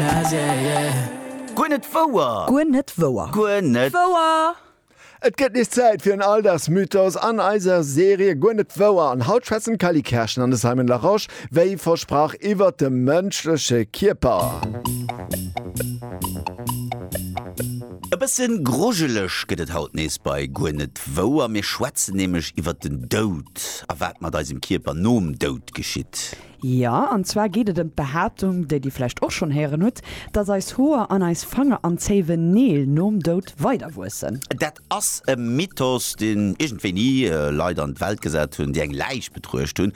Jazz, yeah, yeah. Guer net wouer! Guer net wouer! Guer net wouer! Et gëtt nees Zäit fir en Alldagsmythos an eiser Serie Guer net wouer. An haut schwätzen d'Cally Kerschen an de Simon Larosche wéi versprach iwwert de mënschleche Kierper. E bësse grujeleg gëtt et haut nees bei Guer net wouer. Mir schwätzen nämlech iwwert den Doud a wat mat eisem Kierper nom Doud geschitt. Jo, an zwar geet et ëm d'Behaaptung, déi Dir vläicht och schonn héieren hutt, dass eis Hoer an eis Fanger an zéiwen Neel nom Doud weiderwuessen. Dat ass e Mythos, deen iergend wéini Leit an d'Welt gesat hunn, déi eng Läich betruecht hunn,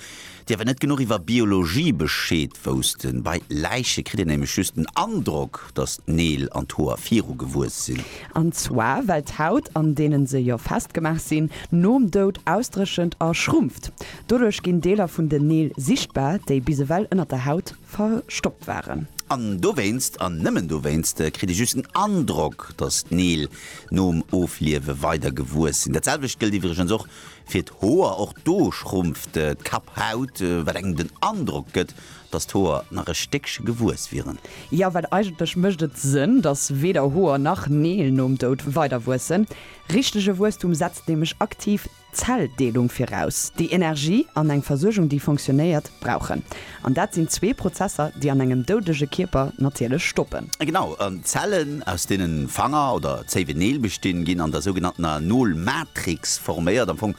déi awer net genuch iwwer Biologie Bescheed woussten. Bei Läiche kritt een nämlech just den Androck, dass d'Neel an d'Hoer viru gewuess sinn. An zwar well d'Haut, an deenen se jo festgemaach sinn, nom Doud ausdréchent a schrumpft. Doduerch ginn Deeler vun den Neel sichtbar, déi bis ewell ënnert der Haut verstoppt waren. An dowéinst, an nëmmen dowéinst, kritt ee just den Androck, datt d'Neel nom Ofliewe weider gewuess sinn. Dat selwecht gëllt iwwregens och fir d'Hoer. Och do schrumpft d'Kapphaut, wat engem den Androck gëtt, datt d'Hoer nach e Stéckche gewuess wieren. Jo, well eigentlech mécht et Sënn, datt weder Hoer nach Neel nom Doud weiderwuessen. Richtege Wuesstum setzt nämlech aktiv Zelldeelung viraus, déi Energie an eng Versuergung, déi funktionéiert, brauchen. An dat sinn zwee Prozesser, déi an engem doudege Kierper natierlech stoppen. Genau, an d'Zellen, aus deenen Fanger oder zéiwe Neel bestinn, ginn an der sougenanntener Nolmatrix forméiert, am Fong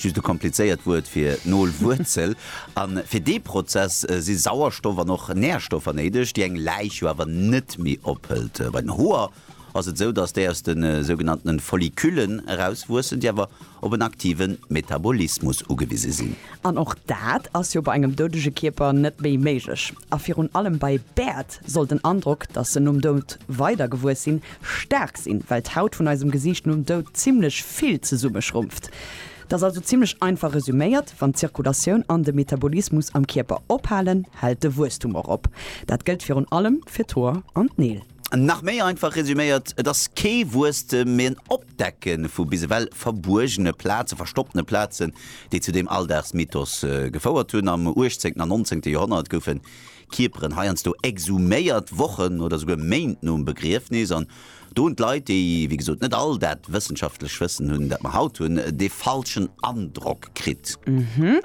just e komplizéiert Wuert fir Nolwuerzel. A fir dee Prozess si Sauerstoff an och Närstoffer néideg, déi eng Läich jo awer net méi ophëlt. Bei den Hoer ass et esou, dass déi aus de sougenannten Folliculen erauswuessen, déi awer op en aktive Metabolismus ugewise sinn. An och dat ass jo bei engem doudege Kierper net méi méiglech. A virun allem bei Bäert soll den Androck, dass se nom Doud weider gewuess sinn, staark sinn, well d'Haut vun eisem Gesiicht nom Doud zimmlech vill zesummeschrumpft. Et ass also zimmlech einfach resuméiert, Wann d'Zirkulatioun an de Metabolismus am Kierper ophalen, hält de Wuesstum och op. Dat gëllt virun allem fir d'Hoer an d'Neel. Nach méi einfach resüméiert, et ass kee Wuesstem, mee en Opdecke vu bis ewell verbuergene Plazen, verstoppene Plazen, déi zu deem Alldagsmythos gefouert hunn. Am uechtzéngten an nonzéngte Joerhonnert goufe Kierperen heiansdo exhuméiert, Wochen oder souguer Méint nom Begriefnis. An do hunn d'Leit, déi wéi gesot net all dat wëssenschaftlecht Wëssen hunn, dat mer haut hunn, dee falschen Androck kritt.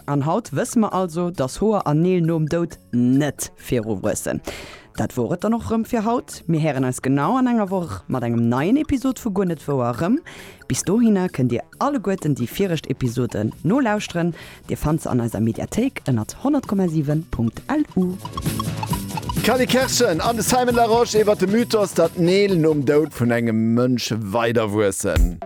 An haut wësse mer also, dass Hoer an Neel nom Doud net viru wuessen. Dat wor et dann och rëm fir haut. Mir héieren eis genau an enger Woch mat engem neien Episod vu Guer net wouer erëm. Bis dohinner kënnt dir alleguerten déi viregt Episoden nolauschteren. Dir fannt se an eiser Mediathéik ënnert 100,7.lu. D'Cally Kerschen an de Simon Larosche iwwer de Mythos, datt Neel nom Doud vun engem Mënsch weiderwuessen.